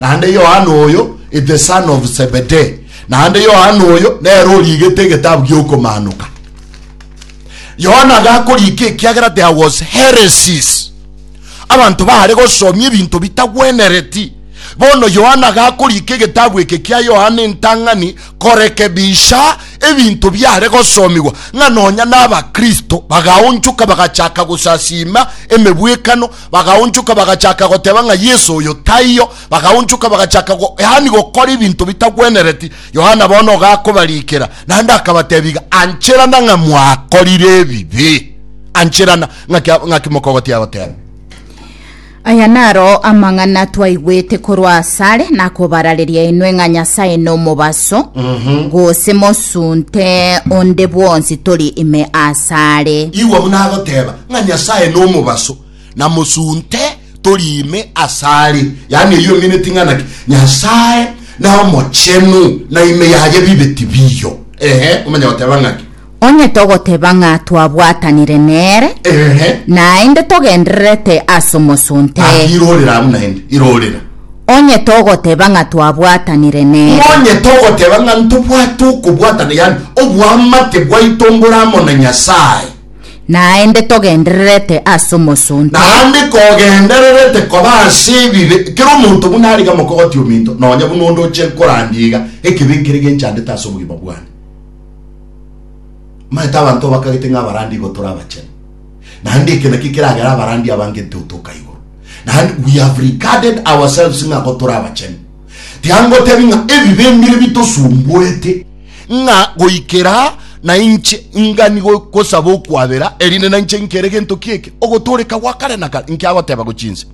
naende Yohana oyo is the son of Zebedee, naende Yohana oyo nere origete egetabu gi'okomaanoka. Yohana agakorika ekiagera there was heresies, abanto baare gosomia ebinto bitagwenereti. Bono Yohana agakorika egetabu eke kia Yohana entang'ani korekebisha ebinto biare gosomigwa, ng'a nonya n'Abakristo bagaonchoka bagachaka gosasiima emebwekano Bagaonchoka bagachaka goteba ng'a Yeso oyo taiyo. Bagaonchoka bagachaka go, yaani gokora ebinto bitagwenereti. Yohana bono ogakobarikera, naende akabatebiga, Ancherana ng'a mwakorire ebibe. Ancherana. Ng'aki a- ng'aki mokogotia agoteba? Aya naro amang'ana twaigwete korwa asare nakobarareria inwe ng'a Nyasae nomobaso, gose mosunte onde bwonsi tori ime asare. Igwa buna agoteba, ng'a Nyasae nomobaso, na mosunte tori ime asare. Yaani eyio emineti ng'a naki Nyasae nomochenu, na ime yaye bibe tibiyo. Ehe, omanya goteba ng'aki? Onye togoteba ng'a twabwatanire nere, Ehe. naende togendererete as'omosunte. Gaki irorera abwo naende, irorera. Onye togoteba ng'a twabwatanire nere. Nonye togoteba ng'a ntobwate okobwatana, yaani oboamate bwaito mbore amo na Nyasae. Naende togendererete ase omosonte. Naende kogendererete koba ase ebibe, kera omonto buna ariga mokogotia ominto, nonya buna onde oche korandia iga, ekibe nkere genchandete ase obogima bwane. Omanyete abanto obakagete ng'a abarandi igo tore abachenu, naende eke nakio keragere abarandi abange ntotoka igoro, naende we have regarded ourselves ng'a igo tore abachenu. Tiangotebi ng'a ebibe mbire bitosumbuete, ng'a goikera nainche ngani gosaba okwabera, erinde nainche nkere gento ki'eke ogotooreka gwa kare na kare, inki agoteba gochia inse?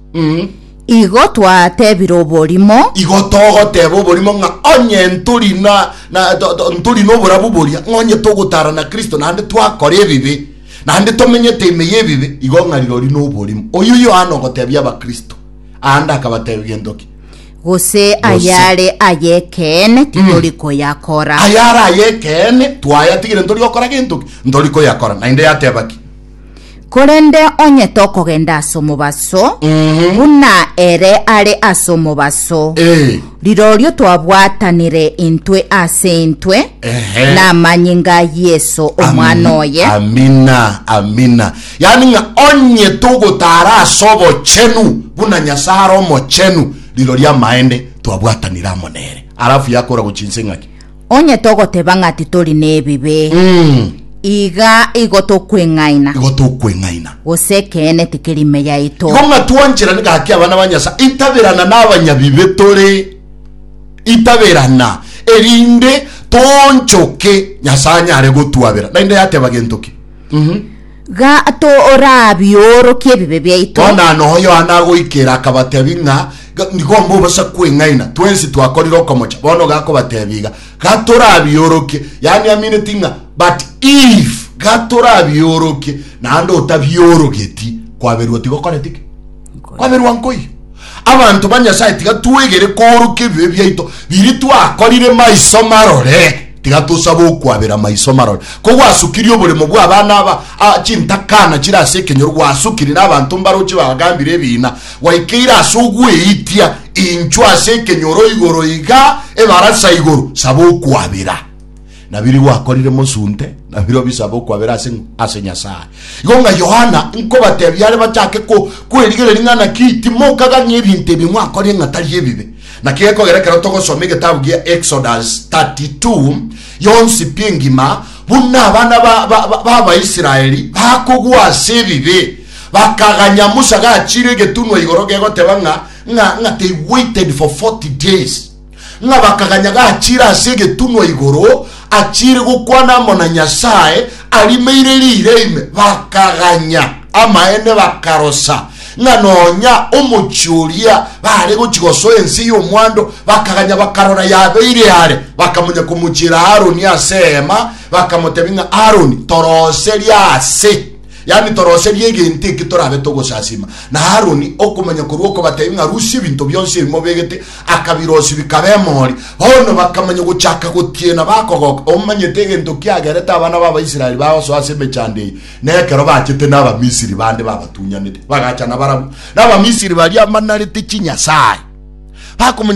Igo twatebire oborimo. Igo togoteba oborimo ng'a onye ntori na, na, to, to, ntori noborabu boria, ng'a onye togotaara na Kristo naende twakora ebibe, naende tomenyete ime y'ebibe, igo ng'a rirorio noborimo. Oyio Yohana ogotebia Abakristo aande akabatebia gento ki? Gose ayare ay'ekeene titori koyakora. Ayare ay'ekeene twayatigire ntori gokora gento ki? Ntori koyakora. Naende yateba ki? Korende onye tokogenda as'omobaso, buna ere are as'omobaso, Eh. rirorio twabwatanire intwe ase intwe Ehe. namanyinga a Yeso, Omwana oye. Amina, amina. Yaani ng'a onye togotaara ase obochenu buna Nyasae are omochenu, rirorio amaende twabwatanire amo nere. Alafu yakora gochia inse ng'aki? Onye togoteba ng'a titori nebibe, Mm, iga igo tokweng'aina, igo tokweng'aina. gose ekeene tikeri ime yaito. Igo ng'a twancherani gaki abana ba Nyasae, itaberana na abanyabibe tore, itaberana, erinde toonchoke Nyasae anyare gotwabera. Naende yateba gento ki? Gato orabiorokie ebibe biaito. Bono aa noho Yohana agoikera, akabatebia ng'a, Ga- nigo mbobosa kweng'aina, twensi twakorire okomocha. Bono gakobatebia iga, Gatorabiorokie, yaani amineti ng'a, but if gatorabiorokie, naende otabiorogeti, kwaberwa tigokoreti ki? Kwaberwa nkoiyo. Abanto ba Nyasae tiga twegere koorokia ebibe biaito biria twakorire maiso marore. Tiga tosabe okwabera maiso marore. Ko gwasukirie oboremo bw'abana aba a chintakana chire ase ekenyoro, gwasukiri n'abanto mbarochi bagambire ebiina, gwaikeire ase ogweitia inchwa ase ekenyoro igoro iga ebarasa igoro, saba okwabera. Nabiria gwakorire mosunte, nabirobio bisabe okwabera ase ase Nyasae. Igo ng'a Yohana nkobatebia are bachake ko kwerigereria ng'a naki timokaga ng'a ebinto ebi mwakorire ng'a tari ebibe. Naki gekogera ekero togosoma egetabu gia Exodus 32 yonsi pi engima, buna abana ba, ba, ba, ba Abaisraeli bakogwa ase ebibe, bakaganya Musa gachire egetunwa igoro gegoteba ng'a ng'a ng'a they waited for 40 days. Ng'a bakaganya gachire ase egetunwa igoro, achire gokwana amo na Nyasae, arimeire riire ime, bakaganya amaene, bakarosa ng'a nonya omochie oria baare gochia gosoa ense y'omwando, bakaganya bakarora yabeire are, bakamonya komochiera Aroni ase eema, bakamotebia ng'a Aroni, toroserie ase yaani toroserie egento eke torabe togosasima. Na Aroni okomanya korwa okobatebia ng'a rusia ebinto bionsi ebi mobegete, Akabirosi bikaba emori. Bono bakamanya gochaka gotiena bakogoka, omanyete egento kiagerete abana b'Abaisraeli bagosoa ase emechando eye, na ekero bachete n'Abamisiri bande babatunyanete, bagacha nabarabwo. Na Abamisiri baria banarete chinyasae, bakomanya